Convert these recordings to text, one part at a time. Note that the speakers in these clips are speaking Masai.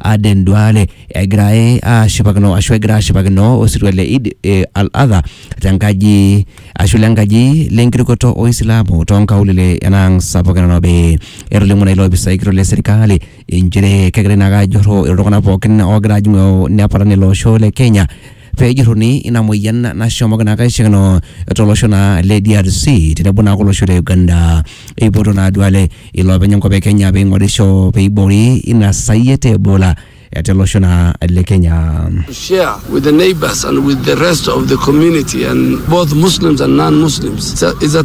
Aden Duale egira eh, ashipakino ashu egira ashipakino osirua le Eid eh, al-Adha tenkaji ashu lenkaji lenkirukoto Oisilamu toonkaulele enaang sapuk e Nairobi. Etolimuo naa ilopisai kitok le serikali inchere kegirai naake ajurru iltung'anak pookin oogira ajing'u nepal ele osho le Kenya pee ejuruni ina moyian nashomoki naa kaishakino tolosho naa le DRC tenebo naa kolosho le Uganda eipoto naa duale iloopeny enkop e Kenya pee ing'orisho pee eiboori ina sayiet e Ebola eh, telosho naa le Kenya. to share with the neighbors and with the rest of the community and both Muslims and non-Muslims. It's a, it's a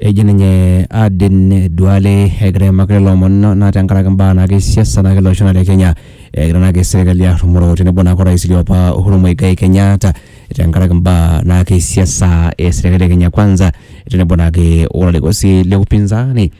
eji ninye Aden Duale egira aimaki lelo omon naa tenkaraki imbaa naake e siasa naake ele osho lang' le Kenya, egira naake serkali arrumoo tenebo naake orais liopa Uhuru Muigai Kenyatta tenkaraki imbaa naake e siasa e serkali e Kenya kwanza tenebo naake o larikok sii le upinzani.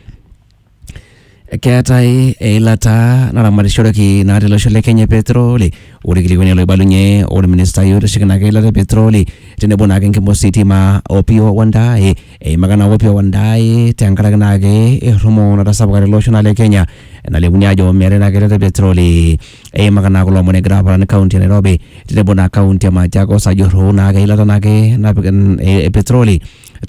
Keetae eilata naramatishoreki naa tele osho le Kenya e petroli. Ore ilkilikuani loibalunye olministai oitasheki naake eilata e petroli tenebo naake enkima ositima Opiyo Wandayi eimaka naa Opiyo Wandayi tenkaraki naake errumoo natasapuka tele osho naa le Kenya nalimuni aajo meetae naake eilata e petroli. Eimaka naa kulo omon egira aparan kaunti e Nairobi tenebo naa kaunti e Machakos ajurru naake eilata naake napik e petroli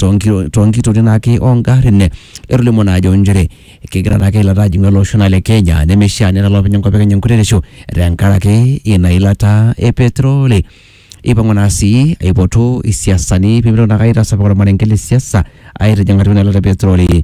toonki- toonkitorin ake ongarrin etolimuo naa ajo nchere kegira naake eilata ajing'u ele osho naa le Kenya nemeishia nelo olopeny enkop e Kenya enkuretisho tenkaraki ina ilata e petroli eipang'u naa sii aipotu isiasani pemitoki naake aitasapuk ormarenke le siasa aitijing'a atua ina ilata e petroli.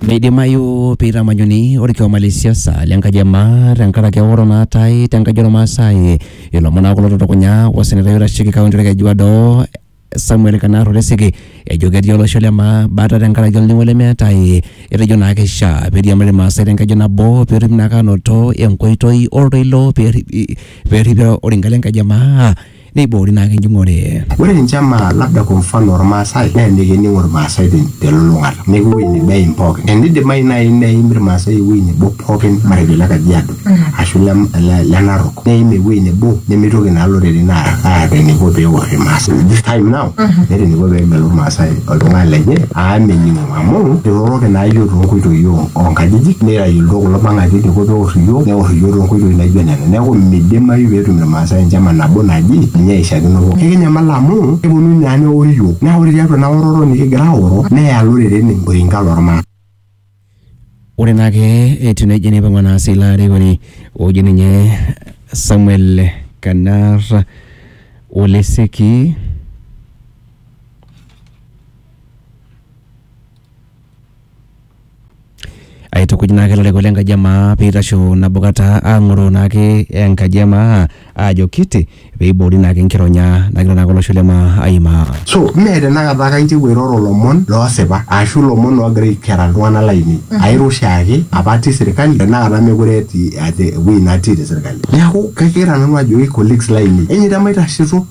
Meidimayu peitamanyuni orkioma le siasa le nkaji e maa tenkaraki eoro naatae te nkaji ormaasai. Ilomon naa kulo otutukunya osenetai oitasheki kaunti orkeju odo Samuel Kanar Oresike ejo ketii olosho le maa bata tenkaraki olning'o lemeetae. Etejo naa keishaa peiriamari irmaasai te nkeju nabo petumi naake anoto enkoitoi oltoilo perripi perripi orika le nkaji e maa. neiboori naa ake enjung'ore. Ore enchama labda kwa mfano Olmaasai naa emikining Olmaasai te lulung'ata neeku ewueji nebo eim pooki. Eneidimayu naaji neim Ilmaasai ewueji nebo pooki matejo ile Kajiado ashu ile Narok neim ewueji nebo nemeitoki naa iloreren aata eneiko pee eor Ilmaasai. This time now eeta eneiko pee egelu Ilmaasai oltung'ani lenye amu mening'o. Amu iroroki naa iyiook too nkoitoi oo nkajijik nitayiolito kulo mang'ati eniko pee eor iyiook neor iyiook too nkoitoi naijo nena. Neeku midimayu pee etum irmaasai enchama nabo naji ninye eishakino pookin. Ekinyamal amu keponunui naa neori iyiook naa ore tiatua ina oroto nikigira aoro neya iloreren oreinka loo rmaasai. Ore naa ake etiu nejia neipang'ua naa sii ilo arikoni oji ninye Samuel Kanar Oleseki Aitukuj naake ilarikok le nkaji e maa piitasho nabo kata aang'oroo naake enkaji e maa aajo kiti peiboori naake enkironya nagira naake olosho le maa aimaa. So mee tenakata ake aiterua airoro ilomon loosipa ashu ilomon oogira aikera iltung'anak lainei. Airo oshiake apa atii sirkali tenakata meekure atii ewuei natii te sirkali. Neeku kagira nanu ajoki colleagues lainei enyeita maitashito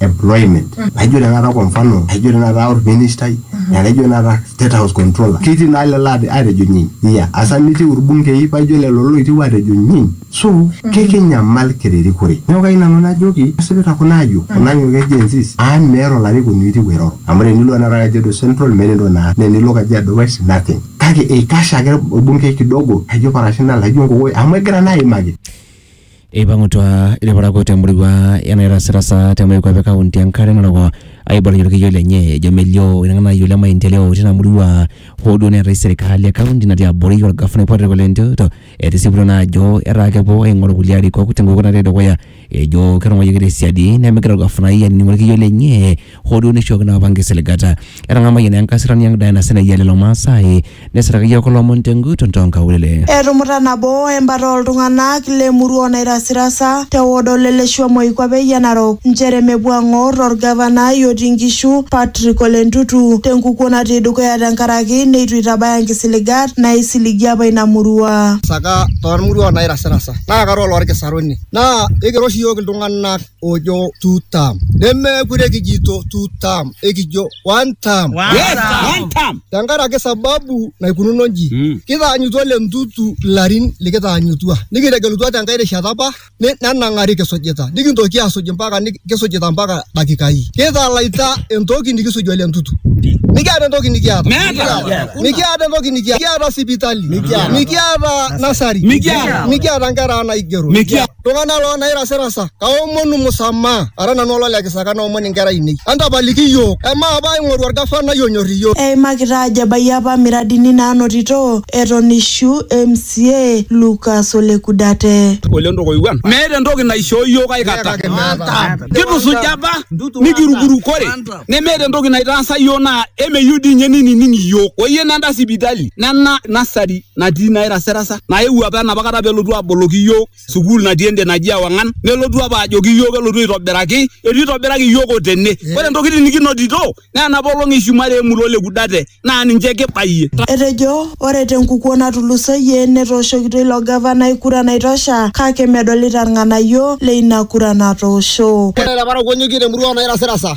employment naijo tenakata kwa mfano naijo tenakata orministai naijo tenakata state house controller ketii naa lelo ate- atejo nyiny iya asa mitiu irbungei paijo lelo loitiu atejo nyiny so kekinyamal kiririkore neeku kayieu nanu najoki esipita kuna ayiok kuna ayiok e Gen Zs amu meeta olarikoni oitiu airoro amu tenilo tenakata kajiado central meeta entoki naas naa enilo kajiado west nothing kake eikash ake orbungei kidogo laijo parashina laijo nkokoyo amu egira naa aimaki Eipang'utua ilparakuo te murua e Nairasirasa te moikuape e kaunti e Nkare Narok aibalunye olkiyo lenye ejo melio ina ng'anayioi le maendeleo tina murua hoo duo neetai serikali e kaunti natii abori olgafanai Patrick Ole Ntutu etisiputua naa ajo etaa kepuo aing'oru kulie arikok tenkukuo natii dukuya ejo ketung'uayioki te siadi nemegira olgafanai ainining olkiyo lenye hoo duo neishooki naa apa nkisiligata. Etang'amayie naa enkasirani ang' Diana Senai e lelo Maasai nesiraki iyiook ilomon tenguton too nkaulele. Etumuta nabo embata oo ltung'ana le murua o Nairasirasa te wod o Leleshua Moikuape Eyian Narok nchere mepuo ang'or o Lgavanai otii Nkishu Patrick Ole Ntutu te nkukuo natii dukuya tenkaraki neitu eitabaya nkisiligat naaisiligie apa ina murua. Saka too lmurua o Nairasirasa naa kara ololkisaruni naa eikira oshi iyiook iltung'ana ojo two term nemeekure kijito two term ekijo one term Yes, one term. tenkaraki sababu naikununo nji Mm. kitaanyutua le ntutu ilarin likitaanyutua nikitegelutua tenkae rishata apa ni- nenang'ari kisujita nikintoki asuj mpaka ni- kisujita mpaka dakikai kitalaita entoki nikisuj ole ntutu nikiata entoki nikiata Meeta. nikiata entoki nikiata nikiata sipitali Mikiata. nikiata nasari Mikiata. nikiata nkera naigero Mikiata. Iltung'anak loo nairasirasa, kaomonu musamaha, ara nanu olo le kisaka naomon inkera ainei. Entapaliki iyiook, amaa apa aing'oru olgafanai onyor iyiook. Eimakita ajo ebayie apa miradini naanotito eton eishu MCA Lucas Ole Kudate. Ole Ntokoiwuan. Meeta entoki naishoo iyiook ai kata. Kitusuja apa nikirukurukore nemeeta entoki naitaasa iyiook naa emeyieu dii ninye neinining iyiook. Oyie nenda sipitali nena nasari. natii nairasirasa naewuo apa enapa kata pelotu aboloki iyiook sukuul natii ende naji ewang'an nelotu apa ajoki iyiook elotu aitobiraki etu itobiraki iyiook otene ore ntokitin nikinotito naa enapa olong eshumare emurua ole kudate naa ninche kibayie Etejo ore te nkukuo natulusoyie netooshokito ilo gavanai kura naitosha kake medolita ilng'anayio le ina kura natoosho. Ore te parakuo nyokie te murua oo nairasirasa.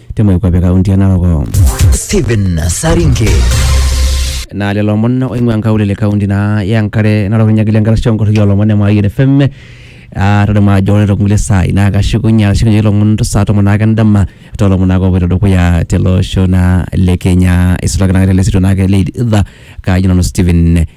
te moikuape e kaunti e Narok. Stephen Saringe. naa lelo omon oing'ua nkaulele kaunti naa ya nkare narok inyakili enkarasha onkorroi olomon e Mayian FM Ah, tadamu ajo ore tokulie saai naa kashukunye ashukunye ilomon saa tomon naake endama tolomon naake opoito dukuya tele osho naa le Kenya isulaki naake tele sito naake le idhaa kaaji nanu Stephen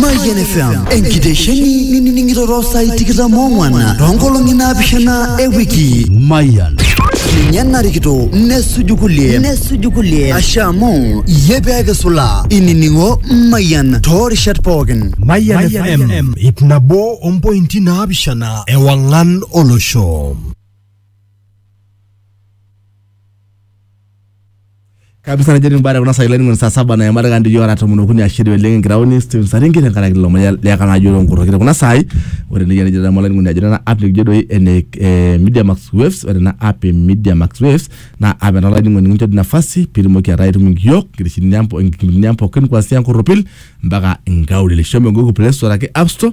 Mayian FM enkitesheni nining'ito too saai tikitam oong'wan too nkolong'i naapishana e wiki. Mayian. Ninye narikito nesuju kulie nesuju kulie ashe amu iyie pee kisulaa inining'o Mayian too rishat pookin. Mayian FM ip nabo ompointi naapishana ewang'an olosho. kabisa najo nimbare kuna sai laining'oni saa saba na emataka ndi yora tomon okuni ashiri oleng enkiraoni Steven Saringi tenkaraki lilo moya leka naa yoro nkurrokito kuna sai ore nejia nejo tamo laining'oni ajo nena app nikijo doi ene eh, Media Max Waves ore ena app e Media Max Waves naa app ena laining'oni nikincho di nafasi pirimoki ataa itum nkiok nkitishini ang po- nkipindini ang pookin kuanzia nkurropil mpaka nkaulele shomo Google Play Store ake App Store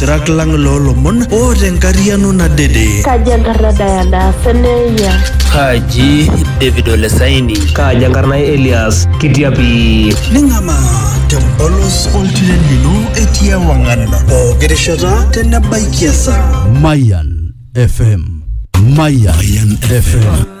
Lasirak lang loolomon oota enkarriano nadede. Kaji enkarna Diana Seneya? Kaji David Olesaini? Kaji enkarna Elias Kitiapi? Ning'amaa tempolos oltiren lino etii ewang'an pooki rishata tenebaiki esaa. Mayan FM. Mayan FM.